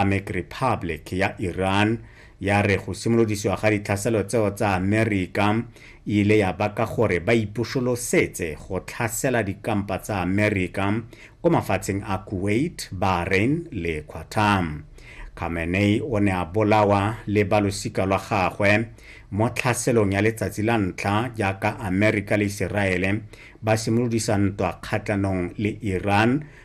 Islamic Republic ya Iran ya re go simolodisiwa ga ditlhaselo tseo tsa Amerika e ile ya baka gore ba ipusolosetse go tlhasela dikampa tsa Amerika ko mafatsheng a Kuwait, Bahrain le Qatar. Khamenei o ne a bolawa le ba losika lwa gagwe mo tlhaselong ya letsatsi la ntlha jaaka Amerika le Iseraele ba simolodisa ntwa kgatlhanong le Iran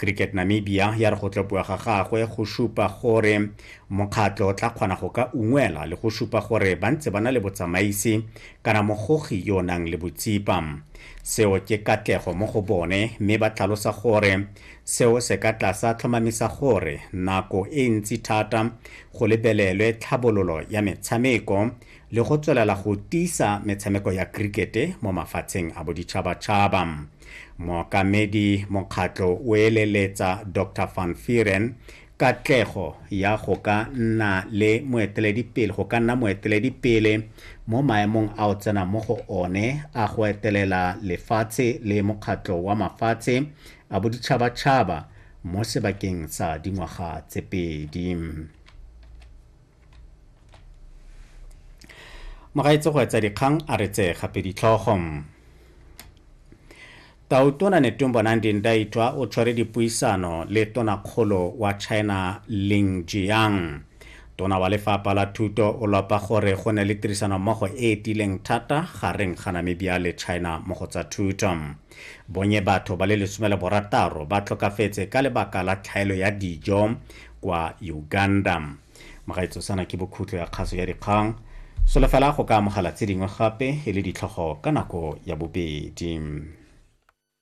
cricket namibia ya re go tlopiwa ga gagwe go supa gore mokgatlho o tla kgona go ka ungwela le go supa gore ba ntse ba na le botsamaisi kana mogogi yo o nang le botsipa seo ke katlego mo go bone mme ba tlhalosa gore seo se ka tlasa tlhomamisa gore nako e ntsi thata go lebelelwe tlhabololo ya metshameko le go tswelela go tiisa metshameko ya krikete mo mafatsheng a boditšhabatšhaba mookamedi mokgatlho o eleletsa dr van firen katlego ya go ka nna le moeteledipele go ka nna moeteledipele mo maemong a o tsenang mo go one a go etelela lefatshe le mokgatlho wa mafatshe a boditšhabatšhaba mo sebakeng sa dingwaga tse pedi mogaetse go etsa dikgang a re tseye gape ditlhogo tautona netumbo nandi ndaitwa o tshwere dipuisano le tonakgolo wa china ling jiang tona wa lefapha la thuto o lopa gore go ne le tirisanommogo e e tileng thata gareng ga namibia le china mo go tsa thuto bonye batho ba le lesome le borataro ba tlhokafetse ka lebaka la tlhaelo ya dijo kwa uganda magaetso sana ke bokhutlo ya kgaso ya dikgang solofela go ka amogela tse dingwe gape e le ditlhogo ka nako ya bobedi